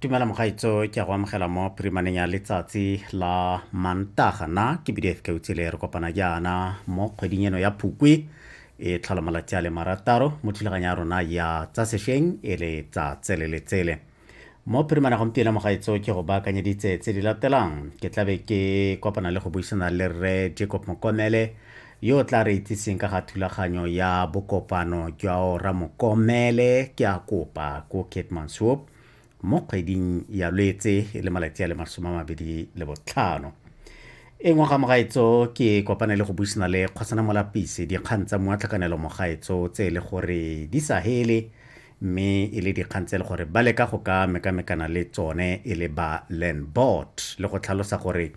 tumela mogaitso ke a go amogela mo phirimaneng ya letsatsi la mantaga na ke bdf keutsele re kopana jaana mo kgweding eno ya phukwi e tlhola malatsi a le marataro mo thulaganyo ya rona ya tsa sešweng e le tsa tsele le tsele mo phirimana gompieno mogaitso ke go baakanyeditse tse di latelang ke tlabe ke kopana le go buisana le rre jacob mokomele Yo o tla re itsiseng ka ga thulaganyo ya bokopano jwa Ora Mokomele ke a kopa ko Keetmanshoop mo kgweding ya Lwetse e le malatsi a le masome a mabedi le botlhano. E nngwe ga mogaetso ke kopane le go buisana le Kgosana Molapisi dikgang tsa mua tlhakanelo mogaetso tse e le gore di sa hele mme e le dikgang tse e le gore ba leka go ka mekamekana le tsone e le ba Landbot le go tlhalosa gore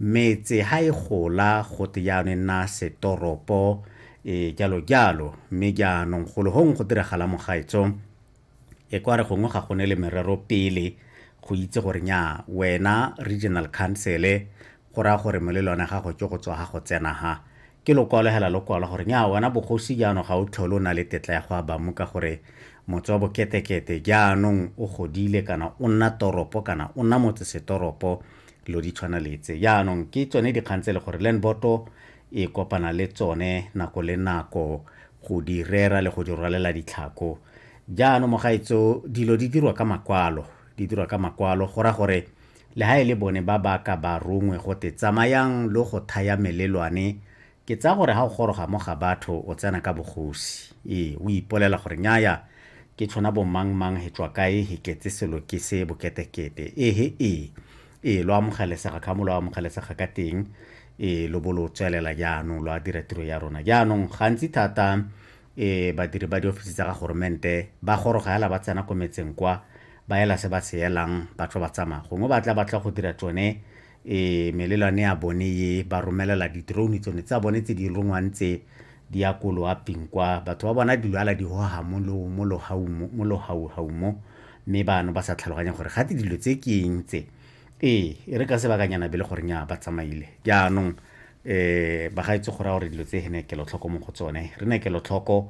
Metse ha e gola go te jaanong e nna setoropo, e jalo jalo. Mme jaanong golo gongwe go diragala mo gaetsho, e kwa re gongwe ga go ne le merero pele go itse gore nya wena regional council go raya gore molelwane ya gago ke go tswa ga go tsena ha ke lokwalo hela lokwalo gore nya wena bogosi jaanong ga o tlhole o na le tetla ya go abamu ka gore motse wa boketekete jaanong o godile kana o nna toropo kana o nna motsesetoropo lo di tshwana letse yaanong ke tsone dikgang tse le gore landboto e kopana le tsone nako le nako go di rera le go di rwalela ditlhako jaanong mogaetso dilo di dirwa ka makwalo di dirwa ka makwalo go ra gore le ha e le bone ba ba ka ba rongwe go te tsamayang lo go thaya melelwane Ke tsaya gore ha o goroga mo ga batho o tsena ka bogosi. Ee, o ipolela gore nnyaya, ke tshona bo mang mang he tswa kae he tletse selo ke se boketekete. Ee he ee. Ee, lo amogelesega ka mo lo amogelesega ka teng. Ee, lo bo lo tswelela jaanong lo a dira tiro ya rona. Jaanong gantsi thata ee badiri ba diofisi tsa ga goromente ba goroga hela ba tsena ko metseng kwa, ba ela se ba se elang, ba tlo ba tsamaya. Gongwe ba tla ba tla go dira tsone E, melelwane ya bone ye ba romelela di-drone tsone tsa bone tse di rongwang tse di ya ko loaping kwa batho ba bona di lwala di hoha mo lo- mo lohau mo- mo lohauhau mo mme bano ba sa tlhaloganya gore gate dilo tse ke eng tse ee e re ka sebakanyana be le gore nya ba tsamaile jaanong um bagaetse go raya gore dilo tse ne kelotlhoko mo go tsone re ne kelotlhoko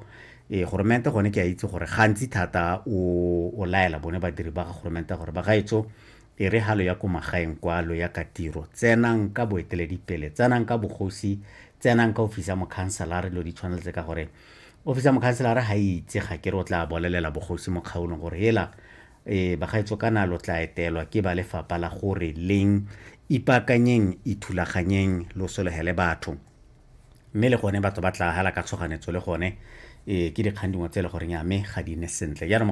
ee goromente gone ke a itse gore gantsi thata o o laela bone badiri ba ga goromente gore bagaetso E re ha lo ya ko magaeng kwa, lo ya ka tiro, tsenang ka boeteledipele, tsenang ka bogosi, tsenang ka ofisi ya mokhanselara, dilo di tshwana le tse ka gore ofisi ya mokhanselara ga e itse ga ke re o tla bolelela bogosi mo kgaolong gore hela e bagaetso kana lo tla etelwa ke ba lefapha la gore leng ipaakanyeng ithulaganyeng lo solegele batho mme le gone batho ba tla hala ka tshoganetso le gone e ke dikgang dingwe tse e le goreng ya me ga di ne sentle jaanong